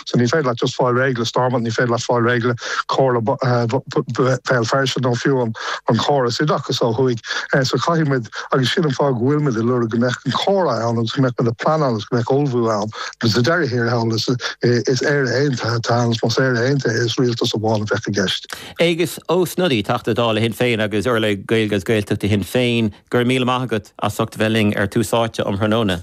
So ní féidir leat just fáil réidh le Stormont, ní féidir leat fáil réidh le Comhairle Bhéal Feirste nó fiú an córas oideachais ó thuaidh. So caithfidh muid, agus sin an fáth go bhfuil muid ag lorg go mbeadh an comhrá ann agus go mbeadh muid ag pleanáil agus go mbeadh ullmhú ann. Agus sa deireadh thiar thall is Éire Aontaithe atá ann. Más Éire Aontaithe is rialtas amháin a bheadh i gceist. Aengus Ó Snodaigh, Teachta Dála Shinn Féin agus urlabhraí Gaeilge agus Gaeltachta Shinn Féin, go raibh míle maith agat as ucht a bheith linn ar Tús Áite um thráthnóna.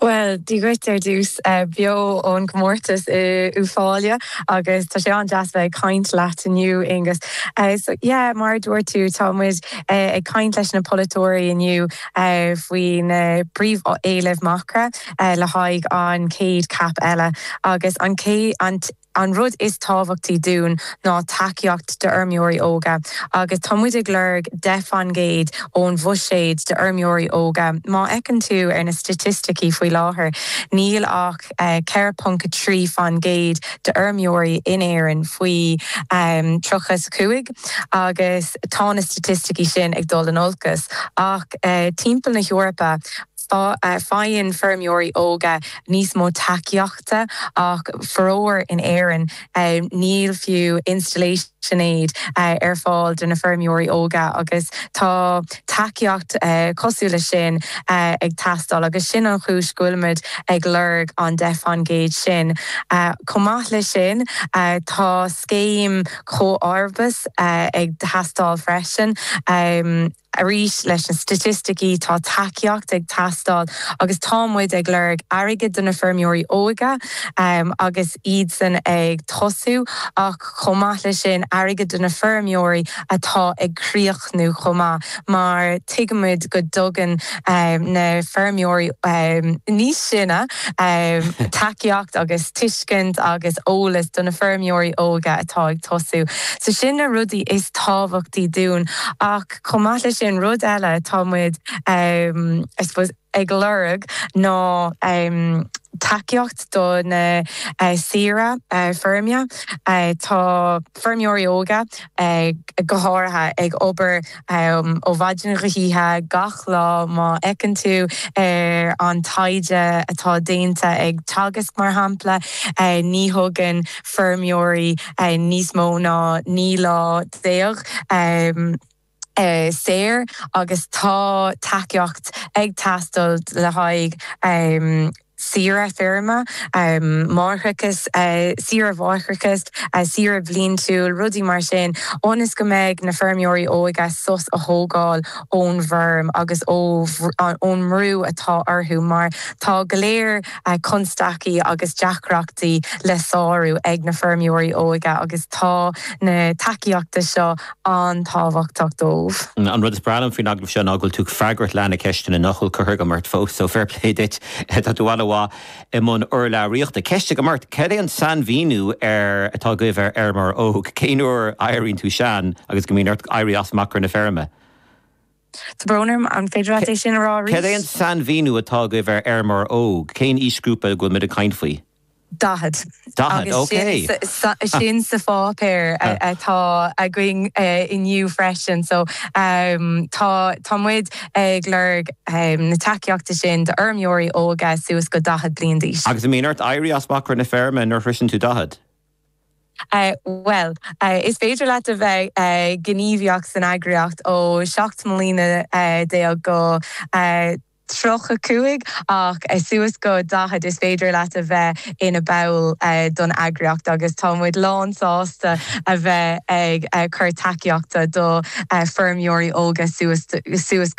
Bhuel, Dia dhuit ar dtús beo ón gcomórtas i Uibh Fáille agus tá sé an-deas bheith ag caint leat inniu, Aonghus. So, yeah, mar a dúirt tú, tá muid ag caint leis na polaiteoirí inniu faoi na príomhéilimh Macra, le haghaidh an chéad CAP eile agus an chéad, an, An rud is tábhachtaí dúinn ná tacaíocht d'fheirmeoirí óga agus tá muid ag lorg 10 faoin gcéad ón bhuiséad d'fheirmeoirí óga. Má fheiceann tú ar na staitisticí faoi láthair, níl ach 4.3 faoin gcéad d'fheirmeoirí in Éirinn faoi 30 's 5 agus tá na staitisticí sin ag dul in olcas ach timpeall na hEorpa. Faigheann feirmeoirí óga níos mó tacaíochta ach faraor in Éirinn níl fiú installation aid ar fáil do na feirmeoirí óga agus tá tacaíocht cosúil le sin ag teastáil agus sin an chúis go bhfuilimid ag lorg an 10 faoin gcéad sin. Chomh maith leis sin tá scéim comharbas ag teastáil freisin. Arís leis na staitisticí, tá tacaíocht ag teastáil agus tá muid ag lorg airgead do na feirmeoirí óga agus iadsan ag tosú ach chomh maith leis sin airgead do na feirmeoirí atá ag críochnú chomh maith mar tuigimid go dtugann na feirmeoirí níos sine, tacaíocht agus tuiscint agus eolas do na feirmeoirí óga atá ag tosú. So sin na rudaí is tábhachtaí dúinn ach chomh maith leis sin rud eile atá muid I suppose ag lorg ná tacaíocht do na saoire feirme. Tá feirmeoirí óga go háirithe ag obair. Ó mhaidin go hoíche, gach lá, má fheiceann tú ar an taighde atá déanta ag Teagasc, mar shampla, ní thógann feirmeoirí níos mó ná 19 lá saor agus tá tacaíocht ag teastáil le haghaidh. saoire feirme, máithreachais, saoire atharthachta, saoire bhliantúil, rudaí mar sin, ionas go mbeidh na feirmeoirí óige sos a thógáil ón bhfeirm agus ón mbrú atá orthu mar tá go léor constaicí agus deacrachtaí le sárú ag na feirmeoirí óige agus tá na tacaíochta seo an-tábhachtach dóibh. An rud is breá liom faoin agallamh seo ná go bhfuil tú ag freagairt leath na gceisteanna nach bhfuil curtha agam ort fós, so fair play duit. Tá tú an-mhaith i mbun urlabhraíochta. Ceist agam ort, cad é an sainmhíniú atá agaibh ar fheirmeoir óg? Cén uair a éiríonn tú sean agus go mbíonn ort éirí as macra na feirme? Tá brón orm, an féidir leat é sin a rá arís? Cad é an sainmhíniú atá agaibh ar fheirmeoir óg? Cén aoisghrúpa a bhfuil muid ag caint faoi? Daichead. Daichead, ok. Agus sin sa pháipéar atá againn inniu freisin. So tá muid ag lorg na tacaíochta sin d'fheirmeoirí óga suas go daichead bliain d'aois. Agus an mbíonn ort éirí as macra na feirme nuair a shroiseann tú daichead? Bhuel, is féidir leat a bheith gníomhaíoch san eagraíocht ó seacht mbliana déag go tríocha cúig, ach suas go daichead, is féidir leat a bheith ina ball don eagraíocht agus tá muid lán sásta a bheith ag cur tacaíochta do feirmeoirí óga suas go.